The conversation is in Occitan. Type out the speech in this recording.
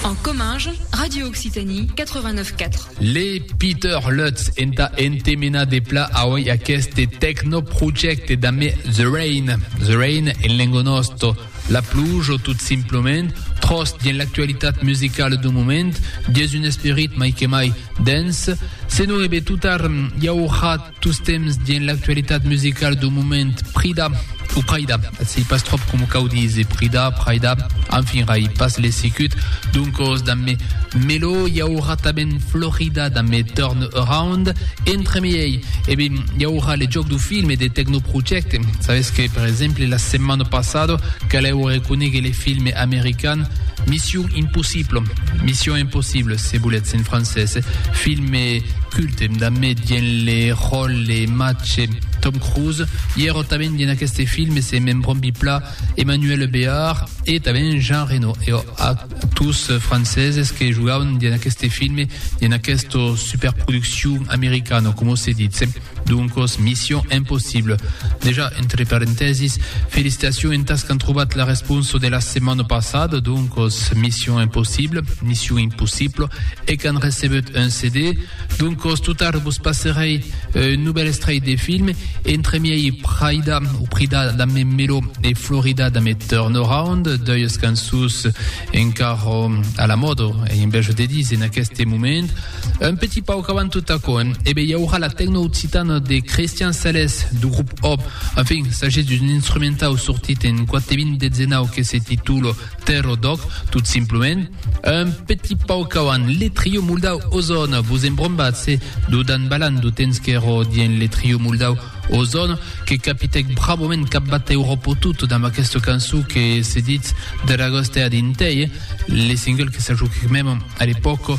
En comminge, Radio Occitanie 89 4. Le Peter Lutz enta entemena de pla aoi aqueste tecnoprojecte dame The Rain. The Rain en lengo nosto. La pluja o tot simplement tros dien l'actualitat musicala d'un moment, dies un esperit mai que mai dens, se no ebe tutar, i aurà Tostemps dins l'actualitat musicala dau moment, Prida, o Praida, sei pas tròp coma cau díser, Prida, Praida, enfin rai pas l'esicut, doncos damb me Melo i aurà tanben Florida damb me Turn Around, entremiei, e ben, i aurà le jòc dau film e de Tecnoprojecte, sabetz que, per exemple, la setmana passada calèu reconéguer le film american Mission Impossible, Mission Impossible, se voletz en francés, film culte, Tem damé dien le ròl le mache Tom Cruise, i ero tanben dien aqueste film e se me'n brombi pla Emmanuelle Béard e tanben Jean Reno, eo actors franceses que jogavan dien aqueste film, dien aquesta superproduccion americana, coma se ditz. Doncos, Mission Impossible. Dejà, entre parentèsis, felicitacion entàs qu'an trobat la responsa de la setmana passada, doncos, Mission Impossible, Mission Impossible. e qu'an recebut un CD, doncos tot tard vos passerèi un novèl estrèit de film, entre miei Praida o Prida d'ame Melo e Florida d'ame Turnaround, doius cançons encara a la mòda, ei un bèl jo de dir, en aqueste moment. Un petit pauc avant tot aquò, e be i aurà la tecno occitana de Christian Sales, du grup Hop, enfin, s'agís d'un instrumentau sortit en 4 de 2019 que se titula Tero Doc, tot simplement, un petit pauc auant le trio moldau Ozon, vos embrombatz-se d'o Dan Balan d'o temps qu'èro dien le trio moldau Ozon, que capitèc bravament cap batèu Ropotoot damb aquesta cançon que se ditz Dragostea Dintei, le single que s'ajoquèc mèm a l'epòca,